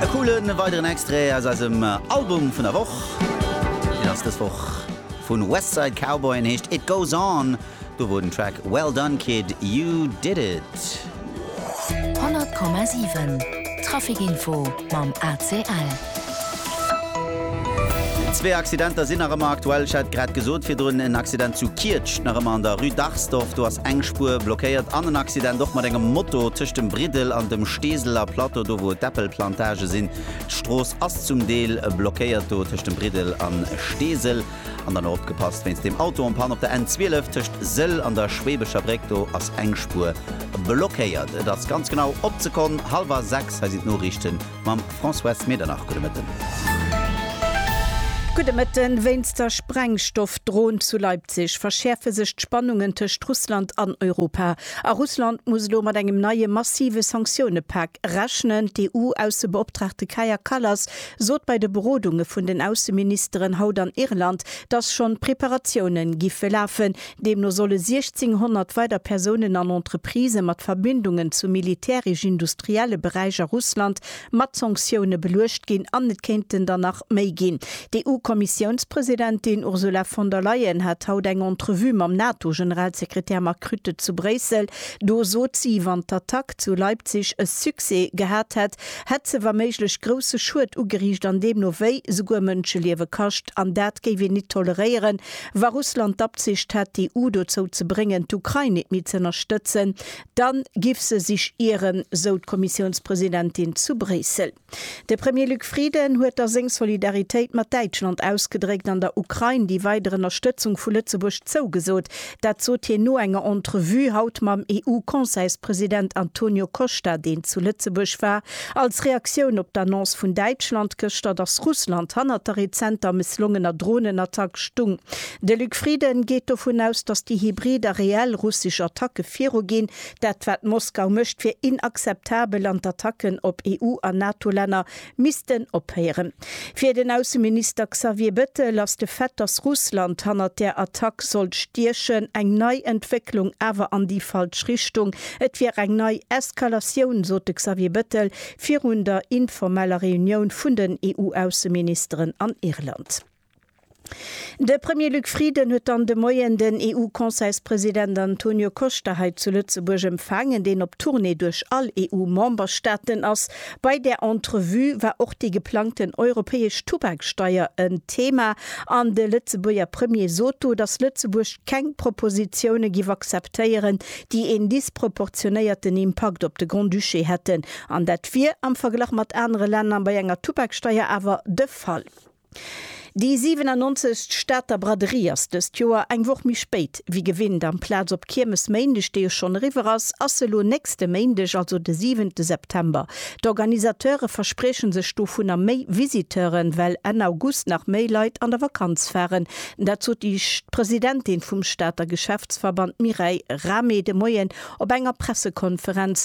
E coolen weideren Extrait aus eisem Album vun der Woch. Deen ass dës Woch vun Westside Cowboy an heescht It Goes On. Do wor den Track Well Done Kid, You Did It. 100,7 Trafic Info mam ACL. Zwee Accidenter sinn nach ëmmer aktuell. Ech hat grad gesot virdrun, en Accident zu Kietscht, nach ëmmer an der Rue Darsdorf. Do ass eng Spuer blockéiert. An en Accident och mat engem Moto tëscht dem Briddel an dem Steeseler Plateau, do wou d'Äppelplantage sinn. D'Strooss ass zum Deel blockéiert do tëscht dem Briddel a Steesel. An dann och opgepasst wéinst deem Auto en panne op der N12 tëscht Sëll an der Schweebecher Bréck. Do ass eng Spuer blockéiert. Et ass ganz genau op d'Sekonn hallwer 6. Hei sinn d'Noriichten Mam Françoise Medernach, gudde Mëtten. Gudde Mëtten. Wéinst der Sprengstoffdrohn zu Leipzig verschäerfe sech d'Spannungen tëscht Russland an Europa. A Russland muss elo mat engem neie massive Sanktioune-Pak rechnen. D'EU-Aussebeoptraagte Kaja Kallas sot bei de Berodunge vun den Ausseministeren haut an Irland, datt schonn d'Preparatiounen giffe lafen, Deemno solle 1600 weider Persounen an Entreprisë mat Verbindungen zum militäresch-industrielle Beräich a Russland mat Sanktioune beluecht ginn an et kéinten der nach méi ginn. D'EU-Kommissiounspresidentin Ursula von der Leyen hat haut eng Entrevue mam NATO-Generalsekretär Mark Rutte zu Bréissel. Do sot si, wann d'Attack zu Leipzig e Succès gehat hätt, hätt se wa méiglech grousse Schued ugeriicht an deemno wéi souguer Mënscheliewe kascht. An dat géif een nit toleréieren, Wa Russland d'Absicht hätt, d'EU dozou ze bréngen, d'Ukrain nit méi z'ënnerstëtzen, dann giff se sich ieren, sou d'Kommissiounspresidentin zu Bréissel. De Premier Luc Frieden huet da seng Solidaritéit mat Däitschland ausgedréckt an der Ukrain déi weider Ënnerstëtzung vu Lëtzebuerg zougesot. Dat sot hien no enger Entrevue haut mam EU-Conseilspresident Antonio Costa, deen zu Lëtzebuerg war, Als Reaktioun op d'Annonce vun Däitschland gëschter, datt Russland hannert der rezenter mësslongener Dronenattack stung. De Luc Frieden geet dovun aus, datt déi hybrid a reell russesch Attacke viruginn. Dat wat Moskau mécht, wier inakzeptabel an d'Attacken op EU a NATO-Länner missten ophéieren. Fir den Ausseminister Xavier Bettel ass de Fait, datt Russland hannert där Attack sollt stiechen, eng nei Entwécklung, awer an déi falsch Richtung. Et wier eng nei Eskalatioun, sot de Xavier Bettel virun der informeller Reunioun vun den EU-Ausseministeren an Irland. De Premier Luc Frieden huet dann de Moien den EU-Conseilspresident Antonio Costa hei zu Lëtzebuerg empfaangen, deen op Tournée duerch all EU-Memberstaaten ass. Bei där Entrevue war och déi geplangten europäesch Tubaksteier en Thema an de Lëtzebuerger Premier sot do, datt Lëtzebuerg keng Propositioune giff akzeptéieren, déi een disproportionéierten Impakt op de Grand-Duché hätten. An dat wier am Verglach mat anere Länner bei enger Tubaksteier awer de Fall. Déi 97. Stater Braderie ass dëst Joer eng Woch méi spéit wéi gewinnt. Amplaz op Kiermesméindeg, déi jo schonn eriwwer ass, ass se elo nächste Méindeg, also de 7. September. D'Organisateure versprieche sech dovunner méi Visiteuren, well Enn August nach méi Leit an der Vakanz faren. Dat sot déi Presidentin vum Stater Geschäftsverband Mireille Rahmé de Moien op enger Pressekonferenz.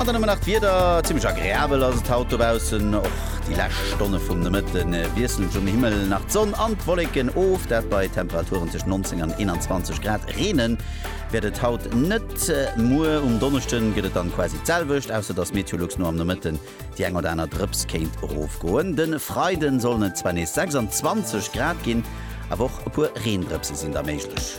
An dann hu mer nach d'Wieder. Zimmlech agreabel ass et haut dobaussen. Och déi lescht Stonne vum Nomëtte wiesselt et um Himmel nach d'Sonn an d'Wolleken of, dat bei Temperaturen tëscht 19 an 21 Grad. Reene wäert et haut net. Muer um Donneschde gëtt et dann quasi d'selwecht, ausser dass Meteolux no am Nomëtten Déi eng oder aner Drëps kéint erofgoen. De Freiden sollen et zwar nees 26 Grad ginn, awer och e puer Reendrëpse sinn da méiglech.